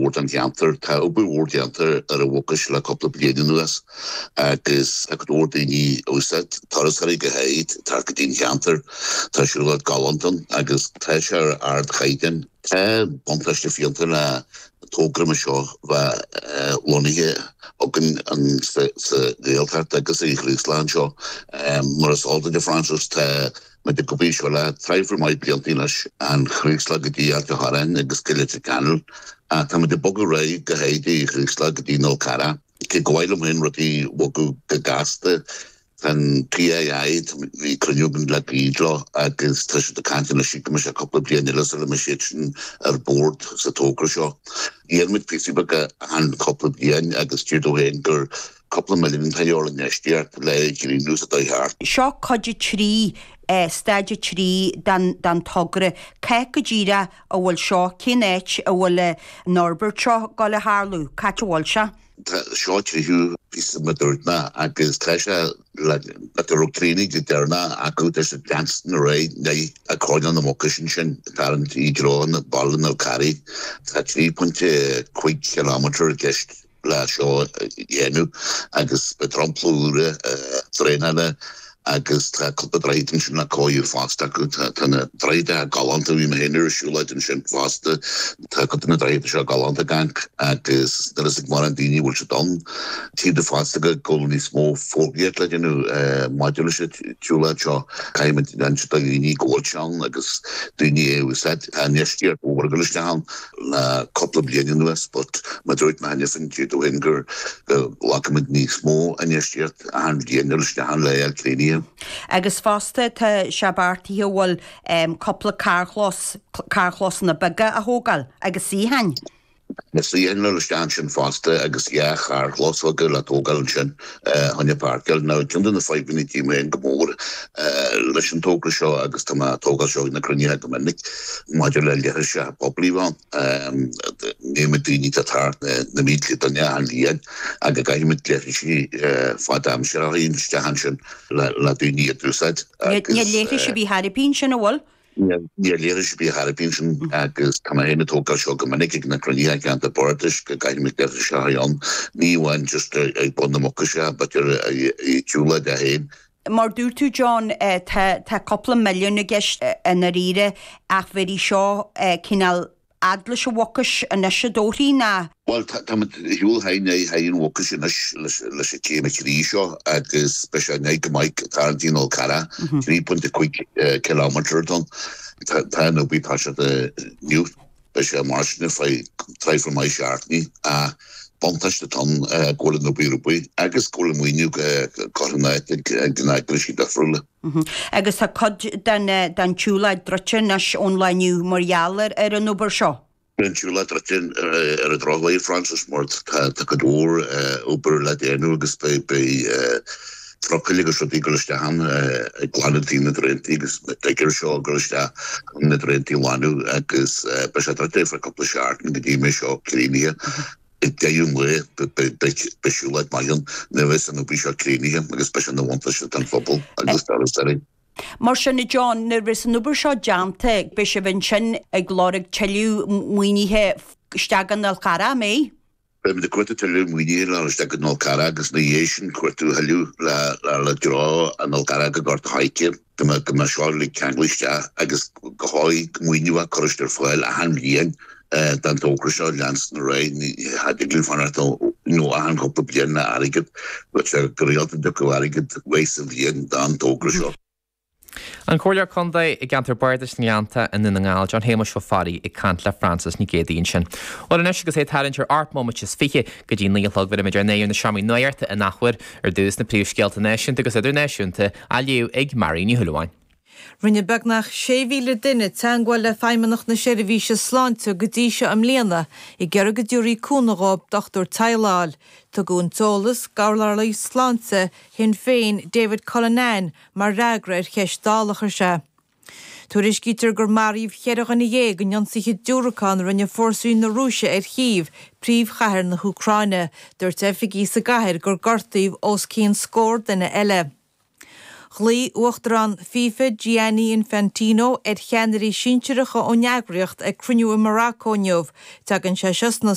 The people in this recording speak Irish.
mhór don cheantar. Tá obair mhór déanta ar an Mhucais le cúpla bliain anuas agus tá go leor daoine á úsáid, turasóirí go háirid, teacht go dtí an ceantar. Tá siúlóid galánta ann agus tá sé ar ardchaighdeán. Tá buntáiste fiánta le togra mar seo bheith lonnaithe againn sa Ghaeltacht agus ar an Chraoslach anseo. Mar is eol duit Frances, tá muid ag obair ar seo le traidhfil maith blianta leis an Chraoslach go dtí Ailt a' Chorráin agus go Leitir Ceanainn, tá muid ag bogadh ar aghaidh go háirid ón Chraoslach go dtí an Fál Carrach. Cé go mhaith liom féin rudaí bhogadh go gasta, tá'n TII, bhí cruinniú againn le gairid leo agus tá siad ag caint anois go mbeidh sé cúpla bliain eile sula mbeidh siad sin ar bord sa togra seo. Gheibheann muid píosaí beaga, achan cúpla bliain agus tchítear domh féin gur. cúpla milliún atá de dhíth orainn infheistíocht le greenways a theacht. Seo cuid a trí, staid a trí, den togra. Cá háit go díreach a bhfuil seo? Cén áit a bhfuil an fhorbairt seo ag dul a tharlú? Cá háit a bhfuil sé? Tá seo an tríú píosa mar a dúirt mé agus tá sé ón áit ar chríochnaigh go deireanach acu tá sé dul ansin ar aghaidh ndeich a coirnéal na Mucaise ansin tarraingt i dtreo na Baile na Carraí. Tá trí pointe cúig ciliméadar i gceist. leis seo a dhéanamh agus beidh dromchla úr, draenáil agus tá cúpla droichead ansin le cóiriú fosta acu. Tá na droichid galánta, bhí mé féin ar siúlóid ansin fosta, tá cuid de na droichid seo galánta ann agus níl a fhios ag mórán daoine go bhfuil siad ann, tchítear domh fosta go bhfuil níos mó fógraíocht le déanamh maidir leis an tsiúlóid seo. Caithfidh muid insint do dhaoine go bhfuil sé ann agus daoine é a úsáid. Tá infheistíocht mhór ag dul isteach ann. le cúpla bliain anuas but mar a dúirt mé cheana féin tchítear domh féin gur go bhfeicfimid níos mó infheistíocht achan bhliain ag dul isteach ann le é a chríochnú. Agus fosta tá sé beartaithe bhuel em cúpla carrchlós, carrchlósanna beaga a thógáil agus suíocháin. Suíocháin ag dul isteach ansin fosta agus dhá charrchlós bheaga le tógáil ansin choinne páirceáil, Now, ceann de na fadhbanna a tchím féin go mór leis an togra seo, agus tá mé á tógáil seo ag na cruinnithe go minic, maidir le leithris leithris poiblí a bheith ann, an méid daoine atá ag teacht na mílte duine achan bhliain, agus caithfidh muid leithris fadaimseartha a chur isteach ansin le daoine iad a úsáid agus. Níl leithris ar bith thart ar bith ansin, an bhfuil? Níl leithris ar bith thart ar bith ansin agus tá mé féin ag tógáil seo go minic ag na cruinnithe i gceantar Bardais go gcaithfidh muid leithris a bheith ann, ní amháin just ag bun na Mucaise but ar an tsiúlóid é féin. Mar a dúirt tú John, tá cúpla milliún i gceist i ndáiríre ach bhéarfaidh seo cineál. fhad leis an Mhucais anois a dtodhraí ná. Bhuel, táimid ag dul ar aghaidh thar an Mhucais anois leis an gcéim a trí seo agus beidh sé in aghaidh go maith ag tarraingt ar an Fhál Carrach, trí point a cúig kilometre atá ann. Tá an obair tosaithe inniu, beidh sé mar sin fá traidhfil maith seachtainí ach an buntáiste atá ann go bhfuil an obair ar obair agus go bhfuil an maoiniú curtha in áit ag na heagrais difriúla. Agus tá cuid den tsiúlóid druidte anois ón lá inniu mar gheall ar an obair seo. Tá an tsiúlóid druidte ar an drochuair, a Frances, mar tá cuid mhór obair le déanamh agus beidh trucailí agus rudaí ag dul isteach ann ag glanadh taobh na draentaí agus diggers ag dul isteach chun na draentaí a ghlanadh agus beidh sé druidte ar feadh cúpla seachtain go dtí go mbeidh seo críochnaithe. I ndeireadh an lae, beidh siúlóid mhaith ann nuair a bheas an obair seo críochnaithe agus beidh sé ina bhuntáiste don phobal agus do thurasóirí. Mar sin, a John, nuair bheas an obair seo déanta, beidh sibh ansin ag lorg tuilleadh maoinithe isteach go an Fhál Carrach, an mbeidh? Beimid ag cuartú tuilleadh maoinithe le dul isteach go an Fhál Carrach agus ina dhiaidh sin ag cuartú tuilleadh le dhul ón Fhál Carrach go Gort a' Choirce. go mbeadh seo uilig ceangailte isteach agus go háirithe maoiniú á chur ar fáil achan bhliain don togra seo a leanstan ar aghaidh, ní thig linn fanacht achan chúpla bliain le airgead, b'fhéidir go rialta go dtiocfadh airgead uair sa bhliain don togra seo. An Comhairleoir Contae i gceantar Bardais na nGleannta i nDún na nGall, John Shéamuis Ó Fearraigh ag caint le Frances Nic Géadaigh ansin. Bhuel anois agus é ag tarraingt ar ocht nóiméad is fiche, Go dtí naoi a chlog bheirimid ár n-aghaidh ar na seomraí nuachta an athuair, ar dtús, na príomhscéalta náisiúnta agus idirnáisiúnta á léamh ag Mary Ní Shúilleabháin. Rinne beagnach 6,000 duine teagmháil le Feidhmeannach na Seirbhíse Sláinte go dtí seo i mbliana ag iarraidh go dtabharfaí cúnamh dóibh dochtúir teaghlaigh a fháil. Tugadh an t-eolas d'urlabhraí sláinte Shinn Féin, David Cullinane, mar fhreagra ar cheist Dála a chuir sé. Tuairiscítear gur maraíodh ceithre dhuine dhéag in ionsaithe diúracán a rinne fórsaí na Rúise ar Chív, príomhchathair na hÚcráine. Dúirt oifigigh sa gcathair gur gortaíodh os cionn scór duine eile. Ghlaoigh uachtarán FIFA, Gianni Infantino, ar cheannairí sinsearacha ón eagraíocht ag cruinniú i Maracó inniu. Tagann sé seo sna.